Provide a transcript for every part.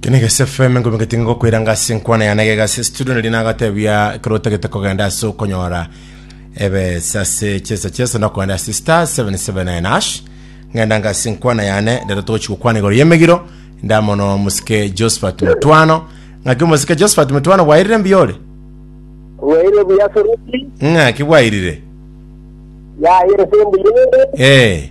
Kene gese FM ngobe ngetinge gokwera anga ase enkwana yana egega ase studio nari nagatebia ekero otagete kogenda ase okonyora ebesa ase chesa chesa na kogenda ase star 779 hash ngenda anga ase enkwana yane rero togochi gokwana igoro yemegiro ndamono musike Josephat Mutwano ng'aki musike Josephat Mutwano bwairire mbiore Waire buya soroti. ng'aki bwairire Ya yere sembu yende. eh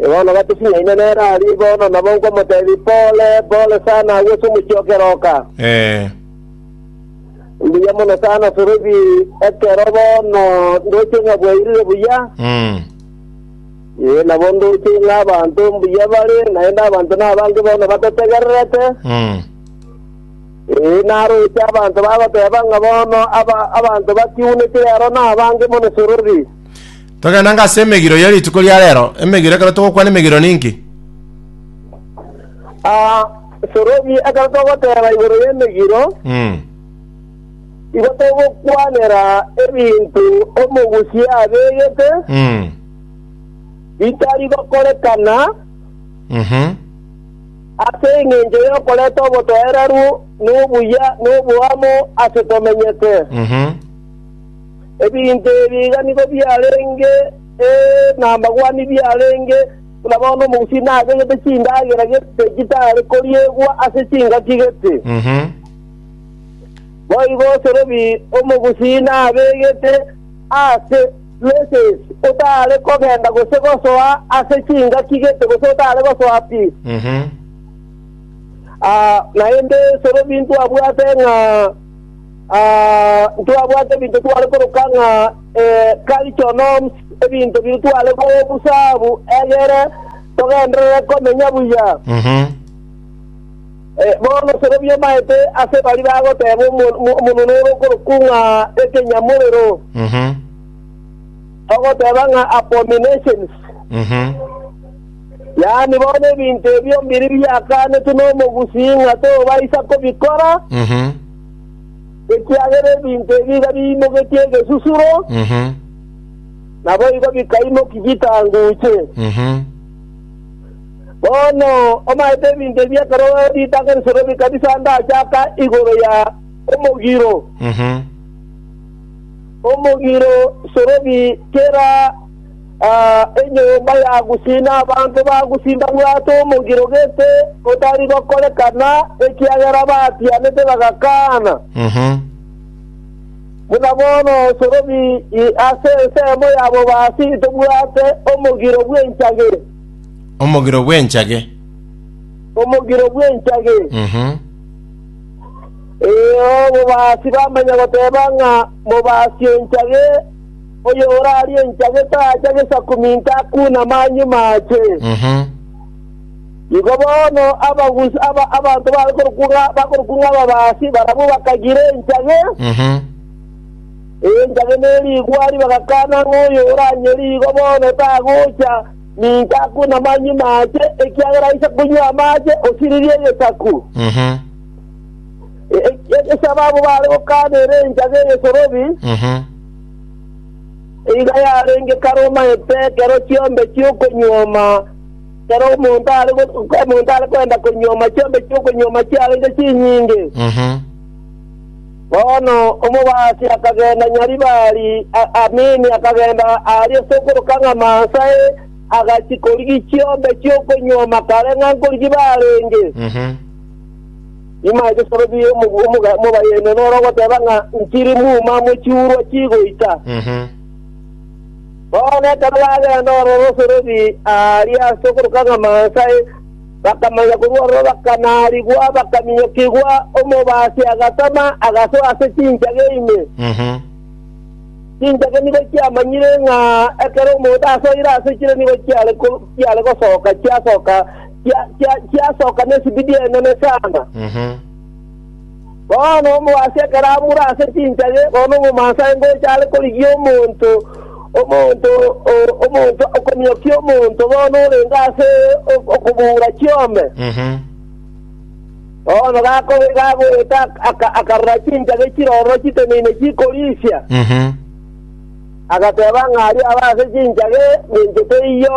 Yohana Omobatisi naende nere aria bono, nabo nkomotebia, Pole, pole sana agwo ase omochie o keroka. Ee. Mbuya mono sana Filipi, ekero bono ndoche ng'a bwairire buya, Mm. ee, nabo ndoche ng'a abanto mbuya bare, naende abanto nabange bono batotegererete, Mm. ee, naroche abanto bagoteba ng'a bono aba- abanto batiuneti rero nabange mono Filipi. Togende ng'a ase emegiro ye rituko ria rero, emegiro ekero togokwana emegiro ninki? Aa, Sorobi, ekero togoteba igoro y'emegiro, Mm. igo togokwanera ebinto omogusia abegete Mm. bitari gokorekana Mhm. ase engencho y'okoreta obotoereru, nobuya, noboamo ase tomenyete. Mhm. Ebinto ebi iga nigo biarenge namagwani biarenge buna bono omogusii agegete chindagera gete chitare koriegwa ase chingaki gete. Boigo Sorobi omogusii nabegete aase Races otare kogenda gose gosoa ase chingaki gete gose otare gosoa pi. Naende Sorobi intwabwate ng'a Ah, ntwabwate ebinto tware koroka ng'a eh, kaichonoms, ebinto biri tware gobusabu egere togenderere komenya buya. Mhm. Eh, bono sorobia omaete ase bari bagoteba omo- omo- omonene ore okorokwa ng'a ekenyamorero, Mhm. ogoteba ng'a abominations. Mhm. Yaani bono ebinto ebio mbiri biakanetwe nomogusii ng'a tobaisa kobikora, Mhm. ekiagera ebinto ebi iga biimogetie egesusuro, Mhm. naboigo bikaimoki chitanguche. Mhm. Bono omaete ebinto ebi ekero ritang'ani risore bikabisanda aase aka igoro ya omogiro. Mhm. Omogiro sorobi kera Enyomba ya Gusii na abanto ba Gusii mbabwate omogiro gete otari gokorekana, ekiagera batianete bagakaana. Buna bono osorobi ase ensemo yabo basi tobwate omogiro bw'enchage, Omogiro bw'enchage. omogiro bw'enchage. Ee, obobasi bamanya goteba ng'a mobasi enchage, Oyorarie enchage tacha gesakumi ntakunama nyuma ache. Igo bono abagusi aba abanto babe korokwo ng'a bakorokwo ng'a ababaasi barabwo bakagira enchage, enchage ne rigwari, bagakana ng'a oyoranyerie igo bono tagocha ninka akunama nyuma ache, ekiagera aise konywa amache, osiririe egesaku. E- e- Egesababu bare gokana ere enchage eyesorobi, Nigo yarenge kare omanyete ekero chiombe chi'okonyuoma, ekero omonto are omonto are koenda konyuoma chiombe chi'okonyuoma chiarenge chinyinge. Mhm. Bono omobaasi akagenda Nyaribari, a- Amini akagenda aaria sokoroka ng'a Mansae, agachia korigia chiombe chi'okonyuoma kare ng'a nkorigia barenge. Mhm. Nyuma ya chisoro chibere omobu- omoga- omobayene noro ogoteba ng'a nchiri muma amo chiurwa chigoita. Mhm. Bono ekero bagenda ororo osoreri aaria ase okoroka ng'a Mansa e, bakamanya korwa ororo bakanaarigwa, bakaminyokigwa, omobaasi agatama, agasoa ase chinchage ime. Mhm. Chinchage nigo chiamanyire ng'a ekero omonto asoire ase chire nigo chiare ko- chiare gosoka, chiasoka chia- chia- chiasoka nesibidi enene sana. Mhm. Bono omobaso ekero amure ase chinchage, bono omomansa aye ngocha are korigia omonto, omonto, o- omonto okomiokia omonto bono orenge ase ok- okobura chiombe. Mhm. Bono gako- gagoeta aka- akarora chinchage chiroro chiteneine chikorisia, Mhm. agateba ng'a aria aba ase chinchage ninche teiyo,